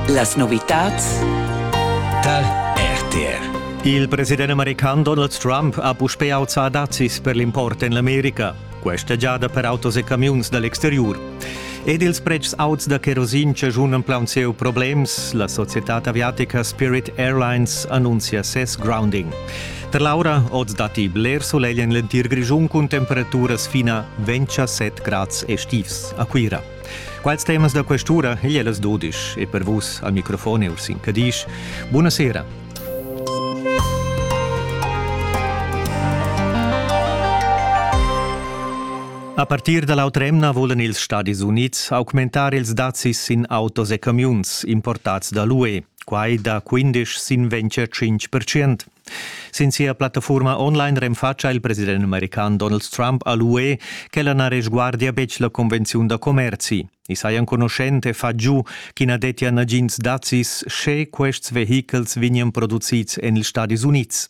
Las novitads tar RTR. Il president american Donald Trump ha puspè auzà dazis per l'import en l'America, questa giada per autos e camiuns da l'exteriur. Ed ils pretschs auts da kerosin chaschunan plaunsieu problems. La societad aviatica Spirit Airlines annunzia ses grounding. Per l'aura oz datti bler solegl en l'entir Grischun cun temperaturas fina 27 grads estivs a Cuira. Quals temas da questura ei las dodisch e per vus al microfon Ursin Cadisch. Buona sera. A partir da l'autremna volen ils Stadis Unids augmentar ils dazis sin autos e camiuns importats da l'UE, quai da 15 sin 25 percent. Sin sia plattafurma online renfatscha il president american Donald Trump a l'UE ch'ella na resguardia betg la convenziun da commerzi. I saja enconuschent e fa giu ch'i na dettia nagins dazis sche quests vehichels vegnian producids en ils Stadis Unids.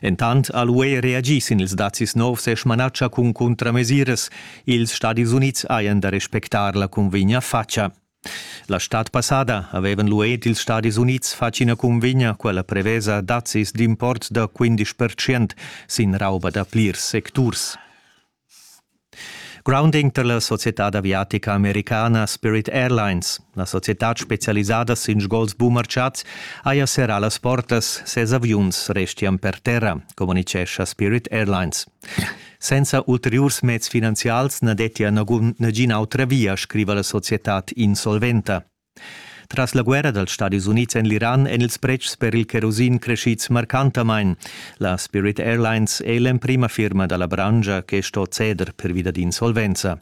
Entant ha l'UE reagì sin ils dazis novs e smanatscha cun cuntramesiras. Ils Stadis Unids hajan da respectar la cunvegna fatscha. La stad passada havevan lu ed ils Stadis Unids fatg ina cunvegna, quella prevesa dazis d'import da 15% sin rauba da plirs secturs. Grounding per la societad aviatica americana Spirit Airlines, la societad specialisada sin sgols bumarciats, haja serrà las portas, ses aviuns restian per terra, communicescha Spirit Airlines. Senza ulteriurs meds finanzials na dettia nagun nagina autra via, scriva la societad insolventa. Tras la guerra dals Stadis Unids en l'Iran èn ils pretschs per il cherosin creschids marcantamain. La Spirit Airlines è l'emprima firma da la branscha che sto ceder pervi dad insolvenza.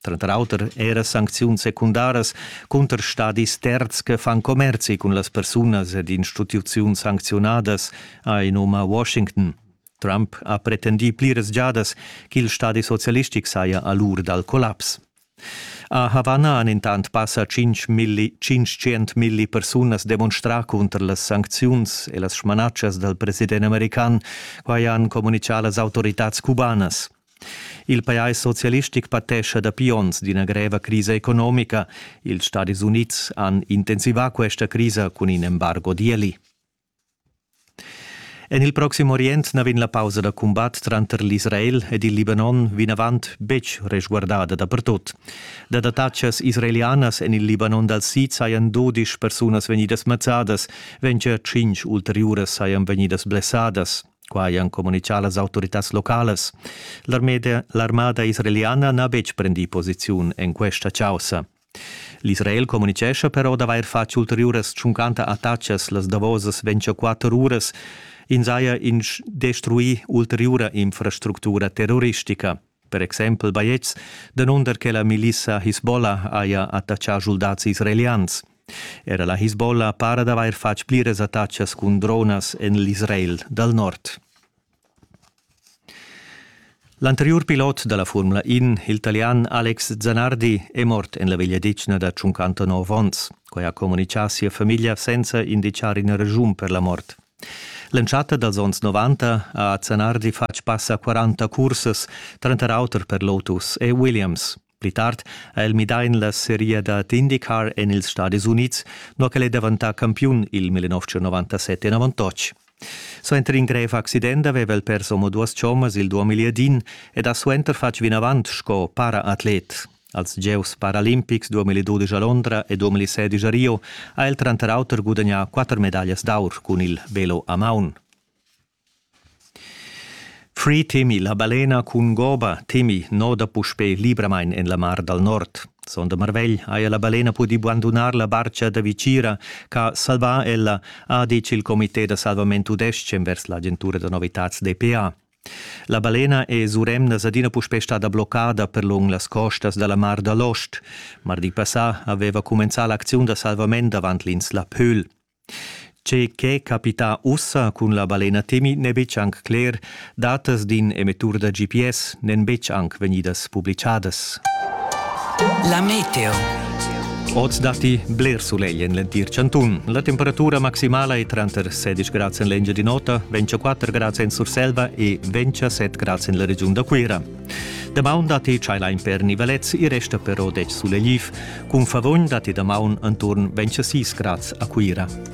tranter auter era sancziuns secundaras cunter stadis terzs che fan commerzi cun las persunas ed instituziuns sancziunadas, ha in um a Washington. Trump ha pretendì pliras giadas ch'il stadi socialistic saja a l'ur dal collaps. A Havanna han intant passa 500 milli persunas demonstrà cunter las sancziuns e las smanatschas dal president american. Quai han communitgà las autoritads cubanas. Il pajais socialistic patescha dapi onns d'ina greva crisa economica. Ils Stadis Unids han intensivà questa crisa cun in embargo d'ieli. En il Proxim Orient na vegn la pausa da cumbat tranter l'Israel ed il Libanon vinavant betg resguardada dapertut. Da dattatschas israelianas en il Libanon dal sid sajan dudisch persunas vegnidas mazzadas, ventg tschintg ulteriuras sajan vegnidas blessadas. Quai han communitgà las autoritads localas. L'armada israeliana n'ha betg prendì posiziun en questa chaussa. L'Israel communitgescha però d'avair fatg ulteriuras tschuncanta attacas las davosas 24 uras. Ins haja instruì ulteriura infrastructura terroristica. per exempel baiets, danunder che la milissa Hisbollah haja attachà schuldats israelians. Era la Hisbollah para d'avair fatg pliras attachas cun dronas en l'Israel dal nord. L'anteriur pilot da la Formula In, il talian Alex Zanardi, è mort en la vegliadetgna da 59 onns. Quai ha communitgà sia famiglia senza indicar ina raschun per la mort. L'entschatta dals onns 90 ha Zanardi fatg pass a 40 cursas, tranter auter per Lotus e Williams. Pli tard ha el midà en la seria dad IndyCar en ils Stadis Unids, nua ch'el è daventà campiun il 1997 enavantotg. Suenter in grev accident aveva el pers omoduas chommas il 2010 ed ha suenter fatg vinavant sco para-atlet. Als gieus paralimpics 2012 a Londra e 2016 a Rio ha el tranter auter gudagnà quatter medaglias d'aur cun il velo a maun. Free temi la balena cun goba temi noda puspè libramain en la mar dal nord. Sonda marvegl haja la balena pudì bandunar la barcha da Vicira ch'ha salvà ella, ha ditg il comité da salvament tudestg envers l'agentura da novitads DPA. La balena e suremnas adina puspè stada bloccada per lung las costas da la Mar da l'Ost. Mardi passà aveva cumenzà l'acziun da salvament davant l'insla Pöhl. Tge che capita ussa cun la balena Temi n'è betg anc cler. Datas d'in emettur da GPS n'èn betg anc vegnidas publichadas. La meteo. Oz datti bler sulegl en l'entir chantun. La temperatura maximala è tranter 16 grads en l'Engiadin'Ota, 24 grads en Surselva e 27 grads en la regiun da Cuira. Damaun datti tschailain per nivelets, i resta però 10 sulegliv. Cun favogn datti damaun enturn 26 grads a Cuira.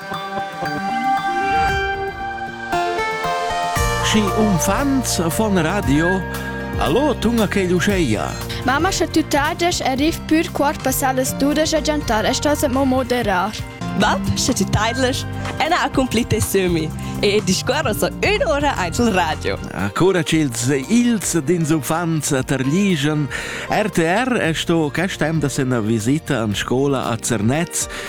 Schi unfants von radio Allo, tunga che Luceia. Mamma sche tutadesh arriv pur quart passar las dudas a giantar e stas mo moderar. Bab, sche ti taidlesh, ena accomplite semi e discorro so un'ora ein sul radio. Ancora ch'ils ils dins uffants terligen. RTR è sto quest temps da sena visita an scola a Zernez